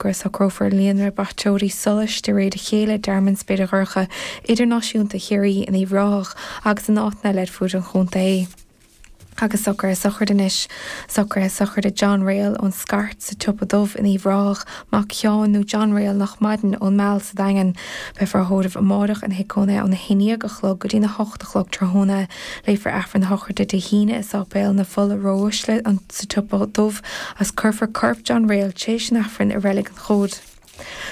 go socrófar líonra braiteoirí solais de réir a chéile i dTearmann Spéire Dhorcha Idirnáisiúnta Chiarraí in Uíbh Ráthach agus in áiteanna eile ar fuaid an chontae. Agus socraithe sochraide anois, socraithe sochraide John Ryle ón Scairt sa tSiopa Dubh in Uíbh Ráthach, mac Sheáin nó John Ryle nach maireann ón Meal sa Daingean. Beifear á thórramh amárach ina thigh cónaithe óna haon déag a chlog go dtí a hocht a chlog tráthnóna. Léifear Aifreann a shochraide Dé hAoine i Sáipéal na Fola ró-uaisle sa tSiopa Dubh agus cuirfear corp John Ryle t'réis an Aifrinn i Reilig an Chomhaid.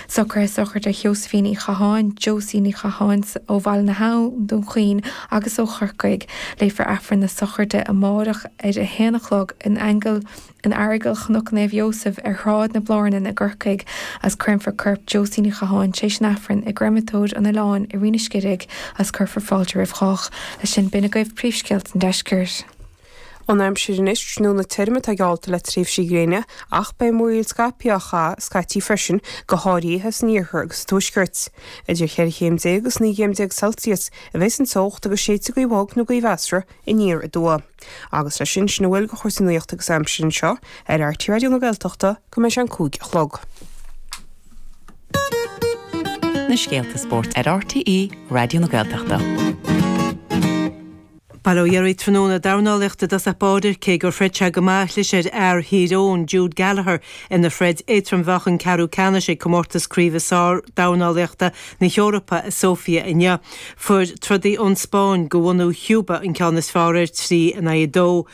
Socraithe sochraide Sheosaimhín Uí Chatháin, Josie Ní Chatháin, ó Bhaile na hAbhann, Dún Chaoin agus ó Chorcaigh. Léifear Aifreann na Sochraide amáireach ar a haon a chlog in Aingeal na. In Aireagal Chnoc Naomh Iósaef ar Shráid na Blárnan i gCorcaigh as cuirfear corp Josie Ní Chatháin tréis an Aifrinn i gCréamatóir an Oileáin i Rinn an Scidígh as cuirfear fáilte roimh chách. Leis sin b'in agaibh príomhscéalta an Deiscirt. An aimsir anois tráthnóna tirim atá geallta le tréimhsí gréine ach beidh múraíl scaipthe á chaitheamh scaití freisin, go háirithe san iarthar agus sa tuaisceart. Idir cheithre chéim déag agus naoi gcéim déag Celsius a bheas an teocht agus séidfidh gaoth bhog nó gaoth mheasartha aniar aduaidh. Agus leis sin, sin a bhfuil de chúrsaí nuachta agus aimsire anseo ar RTÉ Raidió na Gaeltachta go mbeidh sé an cúig a chlog. na scéalta spóirt ar RTÉ Raidió na Gaeltachta. Bail ó Dhia oraibh tráthnóna, dornálaíocht i dtosach báire, cé gur throid sé go maith, chlis ar fhear Thír Eoghain, Jude Gallagher, ina throid éadtrom-mheáchain ceathrú ceannais ag Comórtas Craoibhe Sárdhornálaíochta na hEorpa i Sóifia inniu. Fuair trodaí ón Spáinn go bhunadh Chúba an ceann is fearr air trí in aghaidh a dó.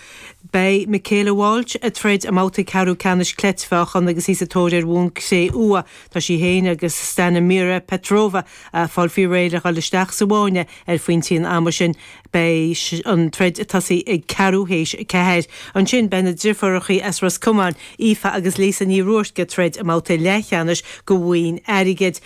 Beidh Michaela Walsh ag troid i mbabhta ceathrú ceannais cleitmheáchan agus í sa tóir ar bhonn cré-umha. Tá sí féin agus Stanimira Petrova a' fáil faoi réir le dhul isteach sa bhfáinne ar phointe an ama sin. Beidh an troid ag tosaí ag ceathrú théis a ceathair. Ansin beidh na driofúrachaí as Ros Comáin, Aoife agus Lisa Ní Ruairc ag troid i mbabhta leathcheannais go bhoinn airgid.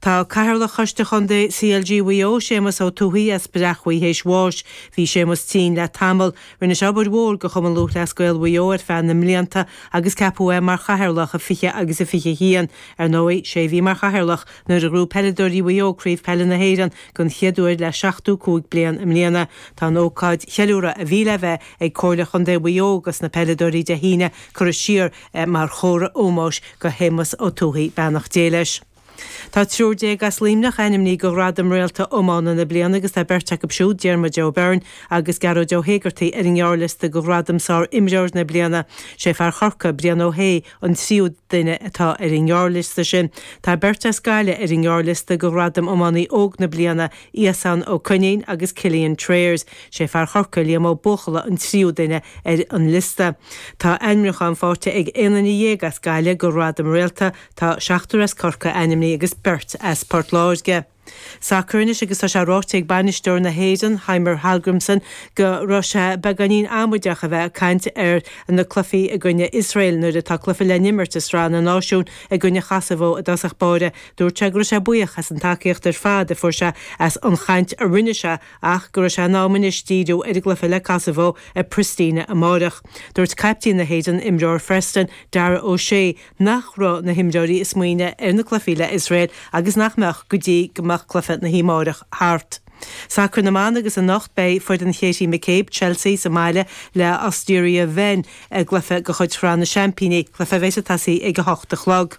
Tá Cathaoirleach Choiste Chontae CLG Mhaigh Eo, Séamus Ó Tuathaigh as Bréachmhaigh théis bháis. Bhí Séamus tinn le tamall. Rinne sé obair mhór go Chumann Lúthchleas Gael Mhaigh Eo ar feadh na mblianta agus ceapadh é mar Chathaoirleach i 20 agus i 21. Ar ndóigh, sé a bhí mar Chathaoirleach nuair a ghnóthaigh peileadóirí Mhaigh Eo Craobh Peile na hÉireann don chéad uair le 75 bliain i mbliana. Tá an ócáid cheiliúrtha a bhí le bheith ag Comhairle Chontae Mhaigh Eo dos na peileadóirí Dé hAoine curtha siar mar chomhartha ómóis go Shéamus Ó Tuathaigh, beannacht Dé leis. Tá triúr déag as Luimneach ainmní do ghradaim Réalta Iomána na Bliana agus tá beirt acu siúd, Diarmuid Ó Beirn agus Gearóid Ó hÉigeartaigh, ar an ngearrliosta do ghradam Sár Imreoir na Bliana. Sé fear Chorcaigh, Brian Ó hAodha, an tríú duine atá ar an ngearrliosta sin. Tá beirt as Gaillimh ar an ngearrliosta do ghradam Iománaí Óg na Bliana, Iasan Ó Coinín agus Cillian Trayers, sé fear Chorcaí, Liam Ó Buachalla an tríú duine ar an liosta. Tá ainmniúchán faighte ag aon duine dhéag as Gaillimh do Ghradam Réalta, tá seachtar as Corcaigh ainmnithe agus beirt as Port Láirge. Sacar anois agus tá sé ráite ag bainisteoir na hÉireann, Heimir Hallgrímsson, go raibh sé beagáinín amaideach a bheith ag caint ar na cluichí i gcoinne Iosrael nuair atá cluiche le n-imirt i Sraith na Náisiún i gcoinne Chosovo i dtosach báire Dúirt sé go raibh sé buíoch as an tacaíocht ar fad a fuair sé as an chaint a rinne sé ach go raibh sé in am anois díriú ar an gcluiche le Kosovo i bPristina amárach. Dúirt caiptín na hÉireann, imreoir Phreston, Dara O'Shea, nach raibh na himreoirí ag smaoineamh ar na cluichí le Iosrael agus nach mbeadh go dtí go mbeadh cluiche na hoíche amárach thart. Sacar na mBan agus anocht beidh foireann Katie McCabe, Chelsea, sa mbaile le Austria Wien i gcluiche de chuid Shraith na Seaimpíní, cluiche a bheas ag tosaí ag a hocht a chlog.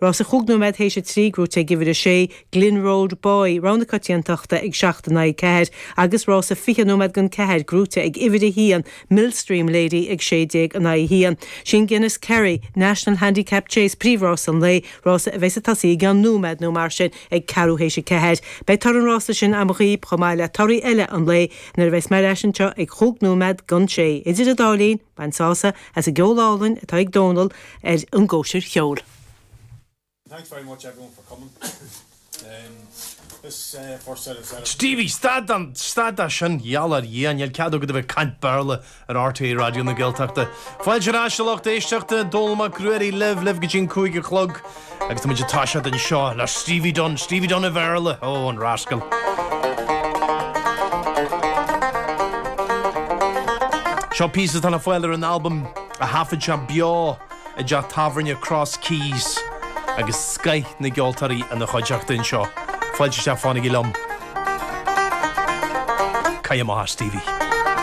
Rása chúig nóiméad théis a trí gnóite ag uimhir a sé, Glin Road Boy, rogha na coitiantachta ag seacht in aghaidh ceathair, agus rása fiche nóiméad don ceathair gnóite ag uimhir a haon, Millstream Lady, ag sé déag in aghaidh a haon. Sé an Guinness Kerry National Handicap Chase, príomhrás an lae, rás a bheas ag tosaí i gceann nóiméad nó mar sin ag ceathrú théis a ceathair. Beidh toradh an rása sin agam dhaoibh chomh maith le torthaí eile an lae nuair a bheas mé ar ais anseo ag chúig nóiméad don sé. Idir an dá linn, Bain sásamh as an gceol álainn atá ag Dónal ar an gCóisir Cheoil. Thanks very much everyone for coming. This first set of set Stevie, stad an, stad as sin, gheall ar Dhia, níl cead agat a bheith ag caint Béarla ar RTÉ Raidió na Gaeltachta. Fáilte ar ais a lucht éisteachta, Dónal Mac Ruairí libh, libh go dtí an cúig a chlog. Agus tá muid ag toiseacht anseo le Stevie Dunne, Stevie Dunne an Bhéarla, ó, an rascal. Seo píosa atá le fáil ar an albam a thaifead sé beo i dteach tábhairne Cross Keys agus scoith na gceoltóirí ina chuideachta anseo. Fáilte isteach, fanaigí liom. Caith amach é Stevie.